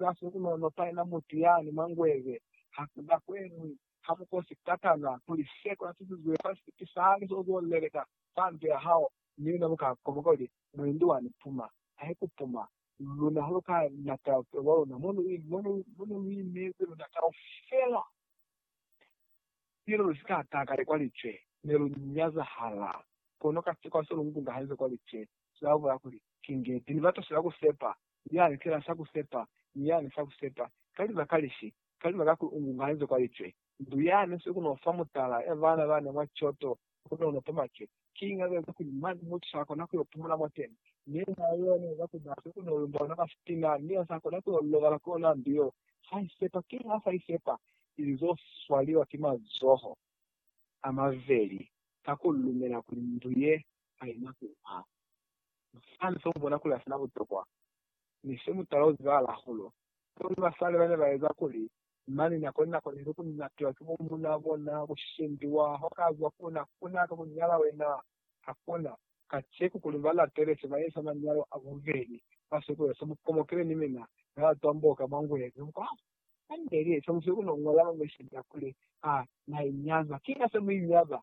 Ka se ku nonofalela mutu yani mwa ngwebe, ha ku na kweñwi ha mu ko si katana kuli se ku atisizwe kwa sipi sani so zo leleka fa ndu ya hao, mi luna mu ka komoka kuli, Muindi wani, puma! Hae ku puma, luna ha lu ka nata bupilo bwa luna mo ne lu imezi luna kaufela, pili lu si ka taha kale kwa licwe. Ne lu nyazahala, kono ka sikwa se lu ngunga hanze kwa licwe, se la bula kuli, Ki ngeti, ni bata fela ku sepa ni ya ni tela sa ku sepa, ni ya ni sa ku sepa, ka libaka lifi, ka libaka kuli u ngunga haize kwa licwe. Ndu yani se ku no fa mutala ya bana bane mwa coto, ku no no pama cwe. Kiñi a ka eza kuli mani mutu sa kona ku yo pumula mwateni? Nena yona eza kuli na se ku no lumba ona masitina, mi a sa kona ku yo lobala ku ona ndu yeo. Ha i sepa. Kiñi ha sa i sepa? Ili zo swaliwa ki mazoho a mabeli ka ku lumela kuli ndu ye hai na ku ha. Musali se u bona kuli ha si na butokwa, mi se mutala u zibahala hahulu. Kuli basali ba ne ba eza kuli mani nako ni nako ni li ku nyapiwa ki bo mun'a bona, ku shishindiwa ho ka zwa ku na ku na ka ku nyala wena, ha ku na. Kaceku kuli ba latelezi ba eza manyalo a bubeli, ba sekulula se mu komokile ni mina, na ba twambuka mwa ngwele ze mukwa. Kandeli, se mu si ku no ñola mwa meshini ya kuli, Ha na inyaza. Kiña se mu inyaza!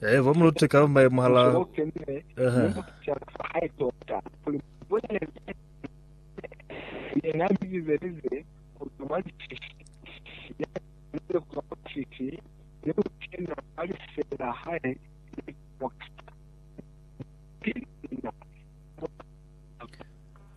Yaheva mulute ka maye muhala. Ehe.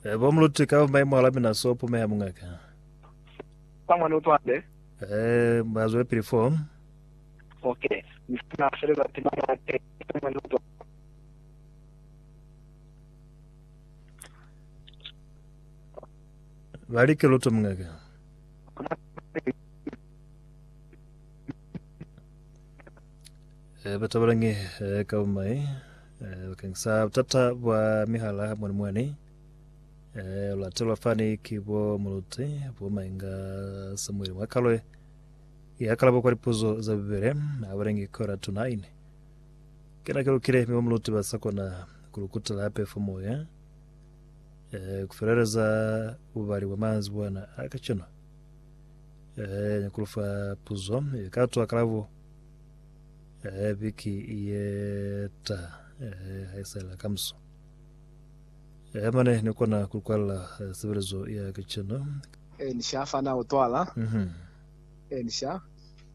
Yaheva mulute ka maye muhala mina so pumeha mungaka. Ee, bazwelepili foo. Ok, mi sina hafelelwa temana hape, hape mwa nutwa. Ba li ki luto mungeke. Ee, batabalangi ee, ka bumai ee, bakeng sa butata bwa mihala mwanimwani. Eh, ulatelwa fani ki bo muluti bo mainga Samuel Mwakalwe ya kalabo kwa lipuzo za Bibele abalengi kora to 9 kena ke lukile mi bo muluti ba sa kona ku lukutela hape fo moya eh, ku feleleza bubali bwa manzi bwana a ka cheno eh, ni ku lufa puzo ya ka twa kalabo eh, biki yeta eh, ha isa la kamso Eya mane ni kona ku kwalla sebelezo ya kacenu. Eeni, sha fana utwala. Eeni, sha.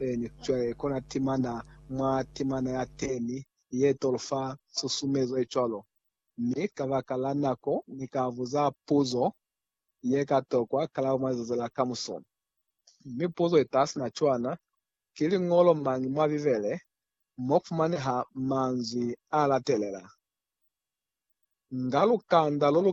Eeni, cwale kona timana mwa timana ya teni ye tolu fa susumezo ye cwalo. Mi kabaka la nako, Ni ka buza puzo ye ka tokwa kalabo mwa lizazi la kamuso. Mi puzo ye ta sina cwana, Ki liñolo mañi mwa Bibele mo fumaneha manzwi a latelela, Nga lukanda lo lu